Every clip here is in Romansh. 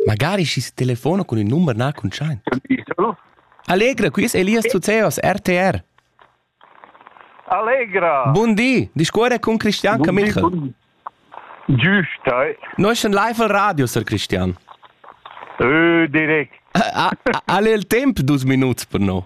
Magari schi's telefona cun ün numer na cuntschaint. Allegra, qui es Elias Zuzeos, RTR. Allegra! Bun di, discuore con Cristian Camichel. Giusta. Noi sind live al radio, Sir Cristian. Ö, direkt. Ha, ha il temp dus minuts per no?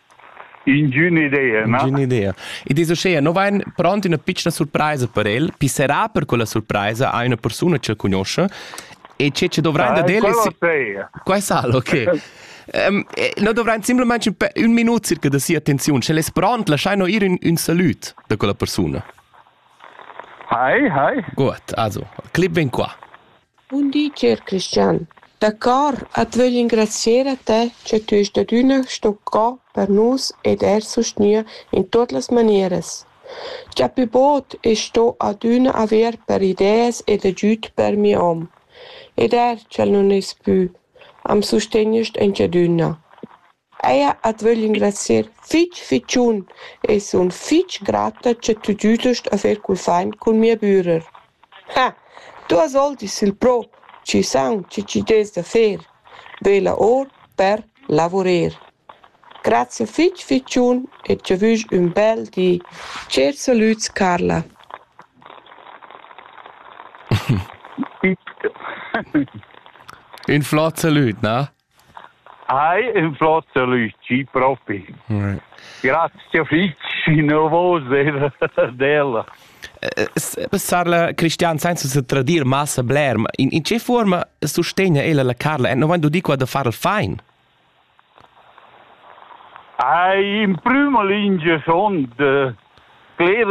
Ingün'idea, na? Ingün'idea. Ed es uschea, no vain pront üna pitschna surpraisa per el. Chi sarà per quella surpraisa? Ha üna persuna ch'el cugnuoscha. E che ce dovrain dad el? Quella Qua è sal, ok. um, no dovrain simplesmente un minut circa da sia attenziun. Sch'el es pront, lasciaino ir un, un salut da quella persuna. Hi, hi. Gut, also, clip vem qua. Bun di, cher Cristian. D'accord at vögl ingrazcher a te cha tü est adüna sto co per nus ed eir sustgnair in tuot las manieras. Dapi bod es sto adüna avair per ideas ed agüd per mi hom. Ed eir sch'el nun es pü, am sustegnest aunch'adüna. Eir at vögl ingrazcher fich fitschun e sun fich grata cha tü giüdast a fer cul fain cun mia bürer. Ha! Tu as voltis il pro chi saun che chi dess da fer, vela our per lavurer. Grazia fich fitschun e cha vus ün bel di. Tschert salüds Carla. Ün flot salüd, na? Hai ün flot alüci propi. Grazia fich innovose d'ella. Sarla Cristian, senza se tradir massa bler, in, in che forma sustegna ella la Carla? No vain du di qua da far il fain? Ai, in prüma lingia son de cler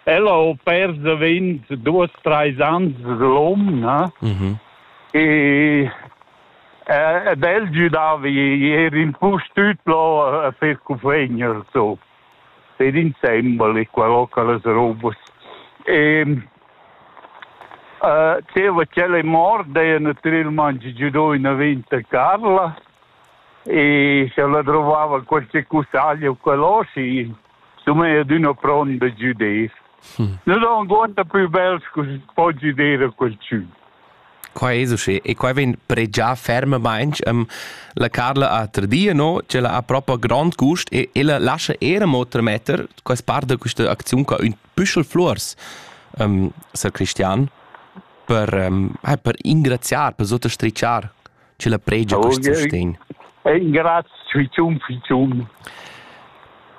Ella ho pers davent duos, trais ans l'hom, na? Mhm. E ed el giudava ier in pus tut lo a fer cufegner so. Per insembel e quello che las robas. E uh, c'era quella morta e naturalmente giudò in aventa Carla e se la trovava qualche cusaglia o qualcosa sun eir adüna pront da güder. Nus ho avuonda plü bels cu po güder a qualchün. Quai es uschè e quai vegn pregià fermamaing. Ehm, la Carla ha tradir, no, ch'ella ha propa grond gust e ella lascha eir amo trametter quest part da quista acziun qua ün püschel fluors, ehm, sar Cristian, per, ehm, per ingraziar, per sutastrichar. che la pregia quest sustegn. Grazie, fitum, fitum.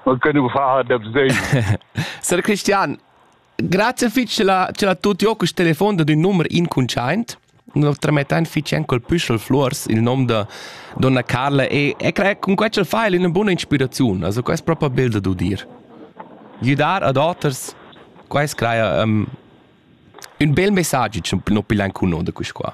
Ma che non fa da Sir Christian, grazie fitch ce la, ce la tutti ho quest telefon da din nummer incuntschaint. Lo tramettain fitch en col püschel flors il nom da donna Carla e, e cre con quel fa è una buona ispirazione. Also quest proprio bild da dir. Gidar ad oters quais craia um, un bel messaggio no pilan cuno da quis qua.